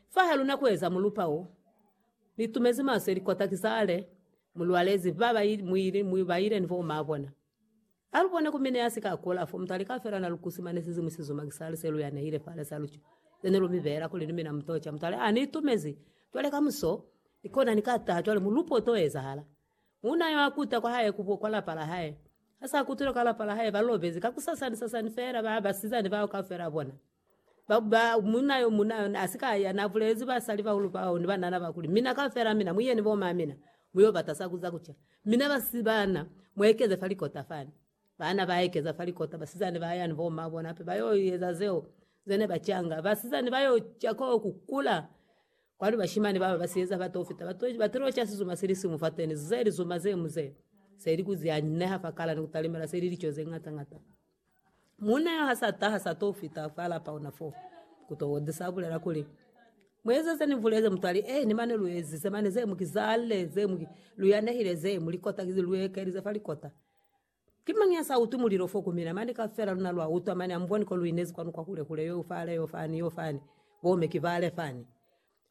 Fahaluna kueza mulupa wo, nitumezi maso ilikota kizale mulwalezi baba ili muili mwi baile ni bo ma bona. Alubone ku mine yasika akula fo mutu alika fela nalukusi mane sizimwi sizuma kisali se luya neile fale sa lucho zene lumibela kuli ni mina mutocha mutu ale a nitumezi cwale kamuso nikona nika taha cwale mulupa uto ezahala. Muuna yo akuta kwa hae ku kwa lapa la hae. Hasa akutile kwa lapa la hae balobezi kakusasani sasani fela ba basizani bao kafela bona. Ba, ba, munna yo muna yona asika ya na bulezi basali bahulu bao ni banana ba kuli, Mina kaufela mina, mu yeni bo mamina, mu yo bata sa kuza kuca. Mina ba si bana, mu ekeze fa likota fani. Bana ba ekeza fa likota, basizani ba ya ni bo ma bona hape ba yo eza zeo ze ne ba canga. Basizani ba yo ca ko ku kula, kwali bashimani bao ba si eza ba to fita, ba to, ba tilo ca sizuma si li siñwi fateni, ze lizuma ze mu ze, se li ku ze anyineha fa kala ni ku talimela, se li lico ze ñata ñata. Muuna yo ha sa taha, sa to fita fa lapa ona fo, ku to ozi sa bulela kuli, Mu eze ze ni bulezi. Mutu ali, Eeni, mane lu ezize mane ze mu ki zalle, ze mu ki, lu yanehile ze mu likota, kizi lu ekelize fa likota. Ki mañi ya sa utwi mulilo fo ku mina? Mane kaufela luna lwa utwa, mane amuboni ko lu inezi kwanu kwa hule hule, yo fale, yo fani, yo fani, bo me ki bale fani.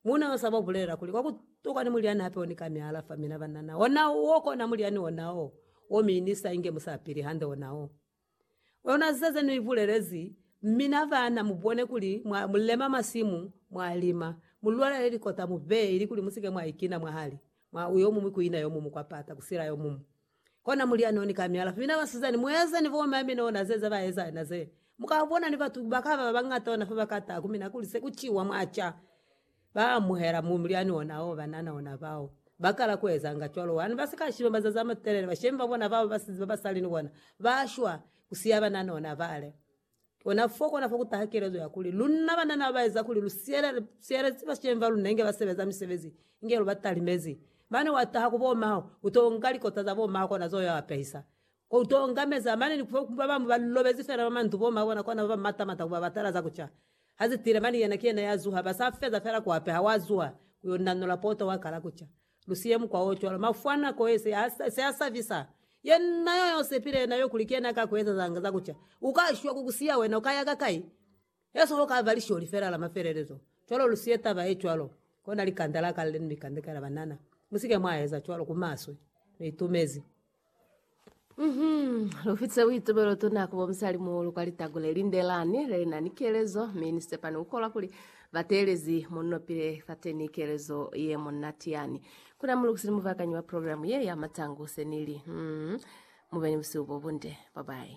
Muuna yo sa ba bulelela kuli, Kwa ku tokwa ni mulyani hape o ni ka ni alafa, mina ba na na ona wo kona mulyani ona wo, wo mi ni sa inge musapili hande ona wo. Ona ziza ze nu i bulelezi, Mina ba na mu bone kuli mwa mu lema masimu, mwa lima, mu lwalele likota, mu beye, ili kuli mu si ke mwa ikina mwahali mwa uyomuñwi ku ina yomuñwi, kwa pata ku sila yomuñwi. Kona mulia noni ka mialafu mina basizani mueza ni bo mami nona zeza ba eza na ze muka bona ni batu bakaba bangata ona fa bakata ku mina kuli se ku ciwa mwa ca ba amuhela mu muliani ona o banana ona bao bakala ku eza nga cwalo wani ba sika shiba mazazi ama telele ba shemba bona bao basizi ba basali ni bona ba shwa ku siya banana ona bale Kona fo, kona fo ku taha kelezo ya kuli, Lunna banna ne ba ba eza kuli lu siyelezi bashemi ba lunna inge ba sebeza misebezi inge lu ba talimezi. Mane wa taha ku bo maho, u to nga likota za bo maho kona zo ya wa pehisa. U to nga meza, mane ni fo ba bañwi ba lobezi fela mwa mandu, bo maho bona kona ba ba mata mata ku ba batela za ku ca. Ha ze tile, mane yena ki yena ya zuha, ba sa feza fela ku apeha, wa zuha ku yo nanola poto wa kala ku ca. Lu siye mukwa o cwalo. Mafu a nako ye se a, se a sabisa. Yena yo yo sepile yena yo kuli ki yena ka ku eza za nga za ku ca, u ka shwa ku ku siya wena, u ka ya ka kai? Yesu ho ka ba Lisholi fela la mafelelezo. Cwalo lu siye taba ye cwalo. Kona likanda la kale ni likanda ka la banana. Mu si ke mwa eza cwalo, ku maswe. Lu itumezi. Mhm. Lu fitise buitubelo tuna ku bo musalimuhulu kwa litago le lindelani le na ni kelezo, mi ni sepani ku kolwa kuli ba teelezi mo ni nopile fateni kelezo ye monati yani. Ku na mulukisi ni mubakanyi wa programu ye ya matangu se ni li, Mhm. Mu be ni busihu bo bunde. Bye-bye.